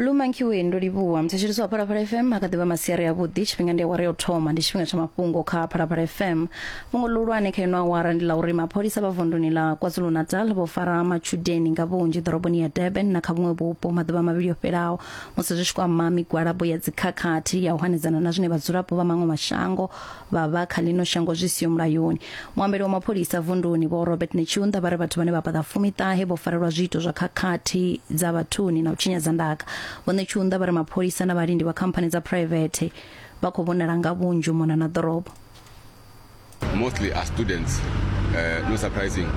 lumankiwe ndo livhuwa mthetshelisi wa phalaphala fm a kha ḓivha masiari avhuḓi tshifhinga ndi awara ya u thoma ndi tshifhinga tsha mafhungo kha phalaphala fm fhungo ḽihulwane kha ino awara ndi ḽa uri mapholisa vha vunduni ḽa kwazulu-natal vho fara matshudeni nga vhunzhi ḓoroboni ya durban na kha vhuṅwe vhupo maḓuvha mavhili o fhelaho musi zwi tshi kwama migwalabo ya dzikhakhathi ya u hanedzana na zwine vhadzulapo vha maṅwe mashango vha vha kha ḽino shango zwi siho mulayoni. Muambeli wa mapholisa vunduni Vho Robert Netshiunda vha ri vhathu vhane vha paḓa fumi ṱahe vho farelwa zwiito zwa khakhathi dza vhathuni na u tshinyadza ndaka. Vho Netshiunda vha ri mapholisa na vhalindi vha khamphani dza phuraivethe vha khou vhonala nga vhunzhi u mona na ḓorobo. mostly are students. Uh, no surprising,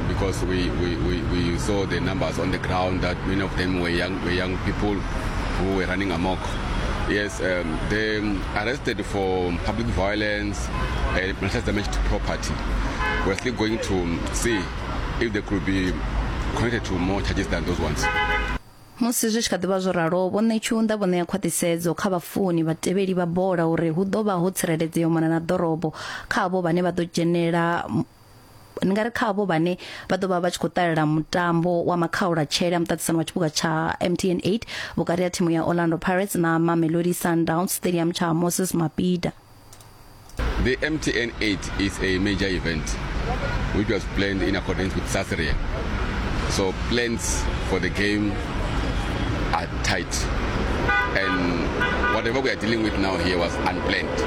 because we, we, we, we saw the numbers on the ground that many of them were young, were young people who were running amok. Yes, um, they arrested for public violence and malicious damage to property. We're still going to see if they could be connected to more charges than those ones. musi zwi tshi kha ḓivha zwo ralo vho ṋetshiunda vho ṋea khwaṱhisedzo kha vhafuni vhatevheli vha bola uri hu ḓo vha ho tsireledzea u mona na ḓorobo kha avho vhane vha ḓo dzhenela ndi nga ri kha avho vhane vha ḓo vha vha tshi khou ṱalela mutambo wa makhaula tshele a muṱaṱisano wa tshiphuga tsha MTN 8 vhukati ha thimu ya Orlando Pirates na Mamelodi Sundowns Stadium tsha Moses Mabhida The MTN 8 is a major event which was planned in accordance with SASRIA. So plans for the game are tight. And whatever we are dealing with now here was unplanned.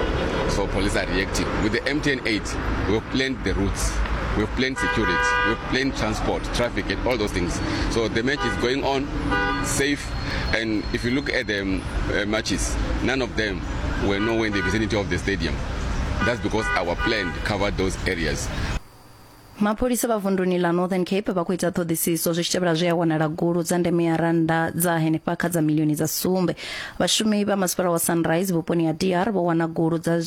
So police are reacting. With the MTN 8, East, we have planned the routes. We have planned security, we have planned transport, traffic, and all those things. So the match is going on safe. And if you look at the um, uh, matches, none of them were nowhere in the vicinity of the stadium. That's because our plan covered those areas. mapholisa vha vunduni ḽa northern cape vha khou ita ṱhoḓisiso zwi tshi tevhela zwe a wanala gulu dza ndeme ya rannda dza henefha kha dza milioni dza sumbe vhashumi vha masipala wa sunrise vhuponi ha dr vho wana gulu dza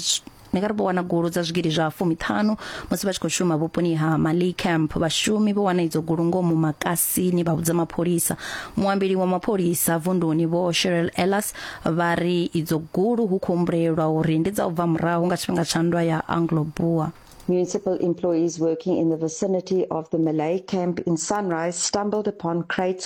ni nga ri vho wana gulu dza zwigidi zwa fumiṱhanu musi vha tshi khou shuma vhuponi ha Mali Camp vhashumi vho wana idzo gulu ngomu makasini vha vhudza mapholisa muambeli wa mapholisa vunduni vho Cheryl Ellis vha ri idzo gulu hu khou humbulelwa uri ndi dza u bva murahu nga tshifhinga tsha nndwa ya Anglo-Boer Municipal employees working in the vicinity of the Malay camp in Sunrise stumbled upon crates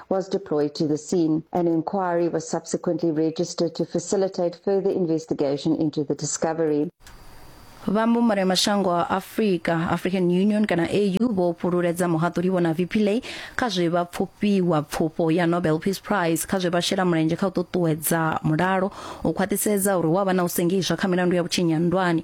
was deployed to the scene. An inquiry was subsequently registered to facilitate further investigation into the discovery. vhambumbano ya mashango a afurika african union kana au vho fhululedza muhaṱuli vhona vpla kha zwe vha pfufhiwa pfufho ya nobel peace prize kha zwe vha shela mulenzhe kha u ṱuṱuwedza mulalo u khwaṱhisedza uri wa vha na u sengiswa kha milandu ya vhutshinyi ha nndwani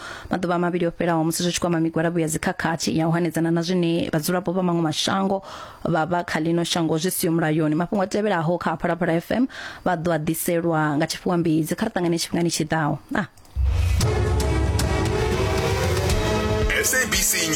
maḓuvha mavhili o fhelaho musi zwi tshi kwama migwalabo ya dzikhakhathi ya u hanedzana na zwine vhadzulapo vha maṅwe mashango vha vha kha ḽino shango zwi siyo mulayoni mafhungo a tevhelaho kha phalaphala fm vha ḓo a ḓiselwa nga tshifhiwa mbidzi kha ri ṱangane tshifhingani tshi ḓaho ah. sabc news